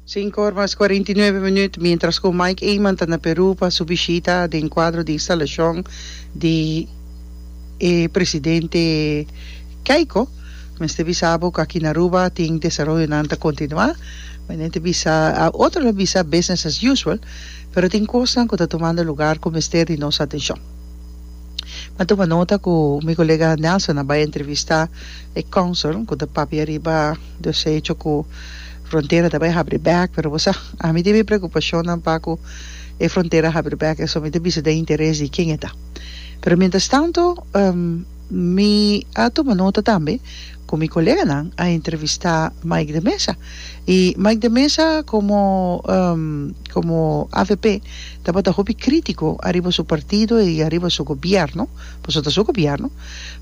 Sinku or mas kuarenta i nuebe minüt, miéntras ku Mike Eman ta na Perú pa su bishita den kuadro di instalashon di e presidente Keiko, mester bisa bo ku aki na Aruba tin desaroyonan ta kontinuá. Mi nunca ta bisa, otro lo bisa business as usual, pero tin kosnan ku ta tumando lugar ku mester di nos atenshon. Mi tuma nota ku mi kolega Nelson a bai entrevistá e kònsel ku ta papia riba. Dios a hecho cu frontera ta bay habri bek, pero bo sa ami tin mi preocupacionnan pa cu e frontera habri bek eso mi ta bisa den interes di ken e ta. Pero mientras tanto mi a tuma nota tambe cu mi coleganan a entrevista Mike de Meza y Mike de Meza como como avp tabata hopi critico ariba su partido y ariba su gobierno, pasobra ta su gobierno.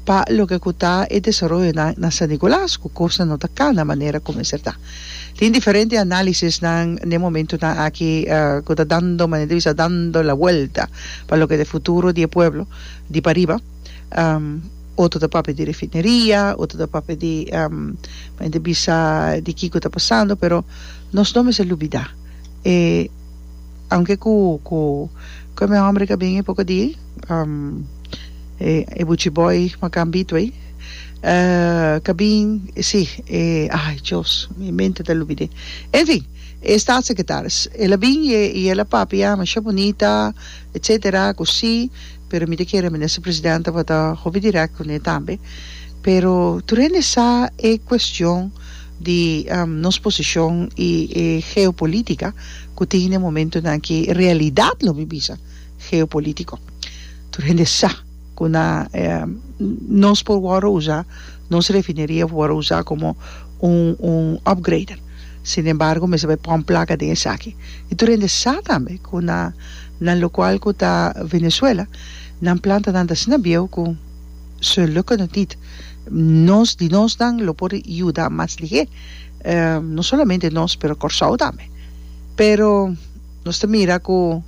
pa loke ku ta e desaroyonan na San Nicolas ku kosnan no ta kana manera ku mester ta. Tin diferente análisisnan n'e momentunan aki ku ta dando manera di bisa dando la welta pa loke ta e futuro di e pueblo di pariba. Otro ta papia di refineria, otro ta papia di manera di bisa di kiko ta pasando pero nos no mester lubidá e Aunke cu cu cu e mi hombre ka bin e poco di um e e buchi boy makan Bidway uh ka bin si e ai Dios mi mente ta lubide en fin e staatssecretaris el a bin y e y el a papia masha bunita etcetera cu si Pero mi ta kere Minister Presidente pa ta hopi direct cu ne tambe. Pero tur hende sa e cuestion di nos posicion y e geopolitica cu tin den e momentonan aki, e realidad lo mi bisa geopolitico. Tur hende sa cu na nos por wordo usa, nos refineria por wordo usa como un un upgrader. Sin embargo mester bay pon placa den esaki. Y tur hende sa tambe cu na. Na lokual ku ta Venezuela, nan plantanan ta asina bieu ku su lukke no tit. Nos di nosnan lo por yuda mas lihé, no solamente nos pero Kòrsou tambe. Pero nos ta mira ku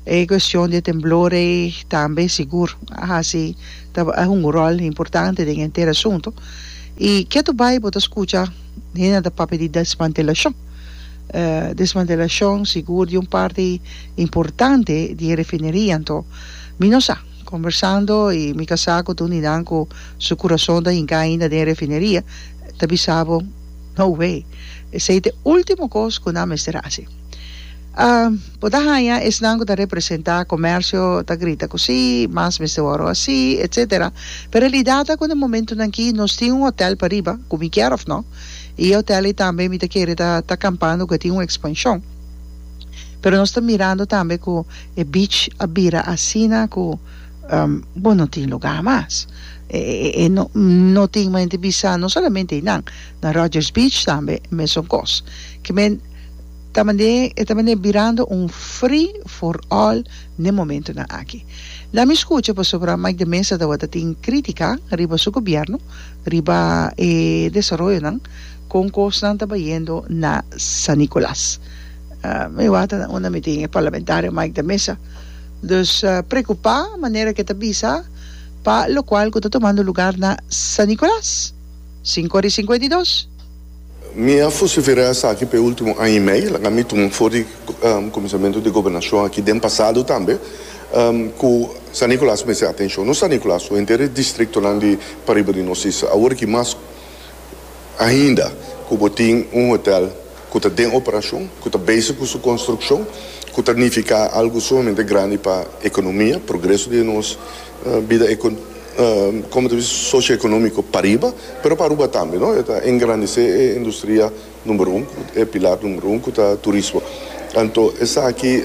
e kuestion di e temblor ei tambe sigur a hasi, ta a hunga un ròl importante den e henter asuntu. I ke ato bai bo ta skucha hende nan ta papia di desmantelashon. Desmantelashon sigur di un parti importante di e refineria anto mi no sa. Kombersando i mi kasá ku tuni nan ku su kurason ta hinká ainda den e refineria ta bisa bo, No way! Esei ta e último kos ku nan mester hasi. Bo ta haña esnan ku ta representá komèrsio ta grita ku sí, mas mester wòrdu hasí, etsetera. Pero e realidad ta ku den momentunan akí nos tin un hotèl pariba, ku mi kier òf no, E hotel ei tambe mi ta kere ta ta campando cu a tin un expansion. Pero nos ta mirando tambe cu e beach a bira asina cu bo no tin lugar mas. E e no no tin mente bisa no solamente einan na Rogers Beach tambe mesun cos. Ki men ta mande e ta mande birando un free for all n'e momentonan aki. Lami scucha pasobra Mike de Meza tawata tin critica riba su gobierno. riba e desaroyonan kon kosnan ta bayendo na San Nicolas. Mi wak ta unda mi tin e parlamentario Mike de Meza, dus preokupá manera ku e ta bisa pa lokual ku ta tomando lugar na San Nicolas, sinku ora i singkuenta i dos. Mi a fusiferá esaki p'e último aña i mei, laga mi tuma for di Kuminsamentu di Gobernashon aki den pasado tambe, ku San Nikolaas mester atenshon. No San Nikolaas, su henter e distriktonan di pariba di nos isla. Awor aki mas ainda ku bo tin un hotèl ku ta den operashon, ku ta bezig ku su konstrukshon, ku ta nifiká algu sumamente grandi pa ekonomia, progreso di e nos. bida como ta bisti socioeconomico pariba pero pa Aruba tambe no e ta engrandece e industria number un e pilar number un cu ta turismo anto esaki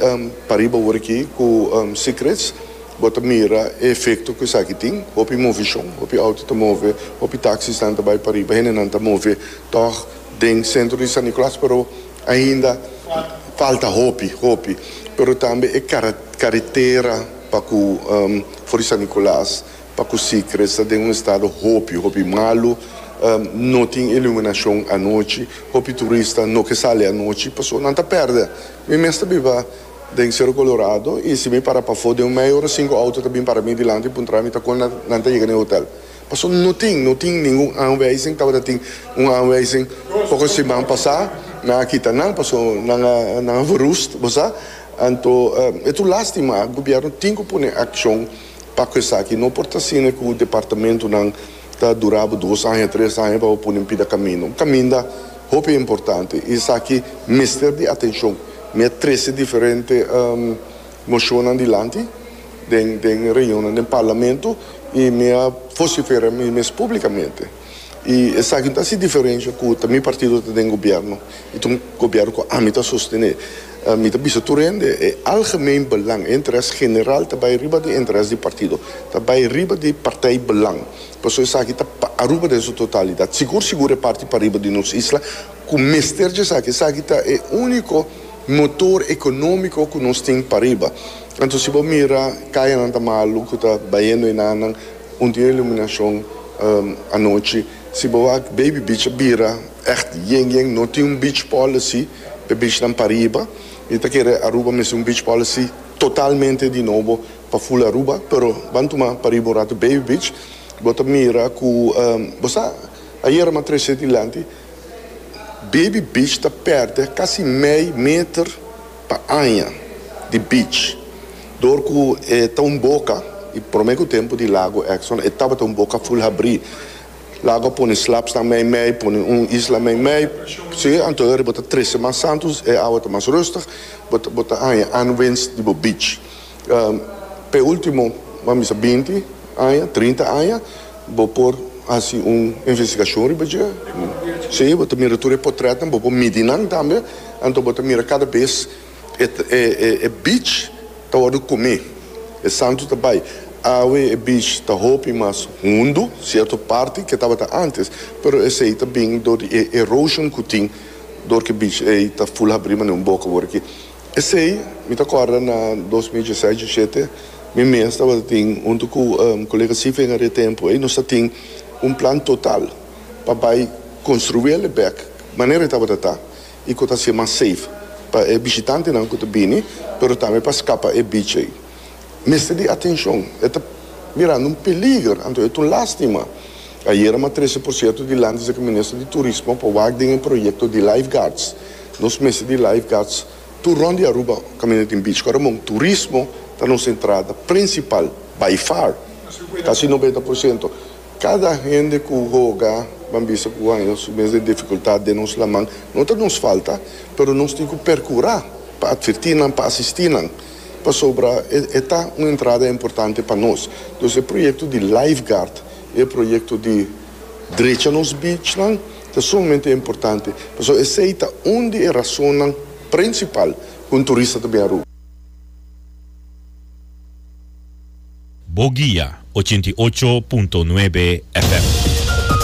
pariba wor aki cu secrets bo ta mira e efecto cu esaki tin hopi movicion hopi auto ta move hopi taxisnan ta bay pariba hendenan ta move tog den centro di San Nicolas pero ainda falta hopi hopi pero tambe e caretera. Pa ku for di San Nicolas, pa ku Sicre sta den un estado hopi, hopi malu. No tin iluminashon anochi. Hopi turista no ke sali anochi pasobra nan ta pèrdè. Mi mes ta biba den Cerro Colorado i si mi para pafó den un meia ora, sinku outo ta bin para mi dilanti puntra mi ta kon nan ta yega na e hotel. Pasobra no tin, no tin ningun aanwijzing. Tabata tin un aanwijzing poko siman pasá, nan a kita nan pasobra nan a nan a verrust, bo sa. Anto e tur lástima. Gobièrnu tin ku pone akshon pa ku esaki. No por ta asina ku departamentunan ta durá bo dos aña, tres aña pa bo pone un pida kaminda. Kaminda hopi importante i esaki mester di atenshon. Mi a trese diferente Mocionnan dilanti den den reunionnan den Parlamento y mi a vocifera mi mes publicamente y esaki no ta haci diferencia cu ta mi partido ta den gobierno y ta un gobierno cu ami ta sostene. Mi ta bisa tur hende e algemeen belang, e interes general ta bay riba di interes di partido, ta bay riba di partij belang. Paso esaki ta pa Aruba den su totalidad, sigur sigur e parti pariba di nos isla cu mester dje esaki. Esaki ta e unico. Motor economico cu nos tin pariba. Anto si bo mira cayanan ta malu cu ta bayendo y nannan un tin iluminacion anochi. Si bo a Baby Beach a bira echt yen yen. No tin un beach policy pe beachnan pariba. Mi ta kere Aruba mester un beach policy totalmente di nobo pa full Aruba. Pero ban tuma pariba un ratu Baby Beach. Bo ta mira cu bo sa ayera mas trece dilanti. Baby Beach ta pèrdè kasi mei meter pa aña di beach dor ku e ta un boka i promé ku tempu di lago Exxon e tabata un boka ful habrí. Lago a pone slapsnan meimei, pone un isla meimei, si, anto e riba ta trese mas santu, e awa ta mas rustig, bo ta bo ta haña unwinds di bo beach. P'e ultimo, mami sa binti aña, trinta aña, bo por hasi un investigashon riba dje. Sí, bo ta mira tur e potrètnan, bo por midi nan tambe, anto bo ta mira kada bes e, e, e beach ta wòrdu kume, e santu ta bai. Awe e beach ta hopi mas hundu, sierto parti ke tabata ántes, pero esei ta bini dor di e erosion ku tin dor ku e beach ei ta ful habrí manera un boka wòrdu ki. Esei mi ta kòrda na dos mil dieset, diesiete, mi mes tabata tin huntu ku kolega Sifen Are tempu ei nos ta tin un plan total pa bai konstruí el e bèk manera e tabata ta i ku ta hasié mas safe pa e bishitantenan ku ta bini pero tambe pa skapa e bich ei. mester di atencion, e ta mirando un peliger, anto e ta un lastima. Ayera ma trece por cierto di lanta esaki Minister di Turismo pa wak den e proyecto di lifeguards. Nos mester di lifeguards tur rond di Aruba caminda tin beach. Cu remon turismo ta nos entrada principal by far, casi noventa por ciento. Cada hende cu hoga ban bisa cu haya su mes di dificultad den nos laman, no ta nos falta, pero nos tin cu percura pa adverti nan, pa asisti nan. Pasobra e ta un entrada importante pa nos. Dus e proyekto di lifeguard i e proyekto di drecha nos beachnan ta sumamente importante pasobra esei ta un di e rasonnan prinsipal ku un turista ta bin Aruba. Bo guia ochenta i ocho punto nuebe FM.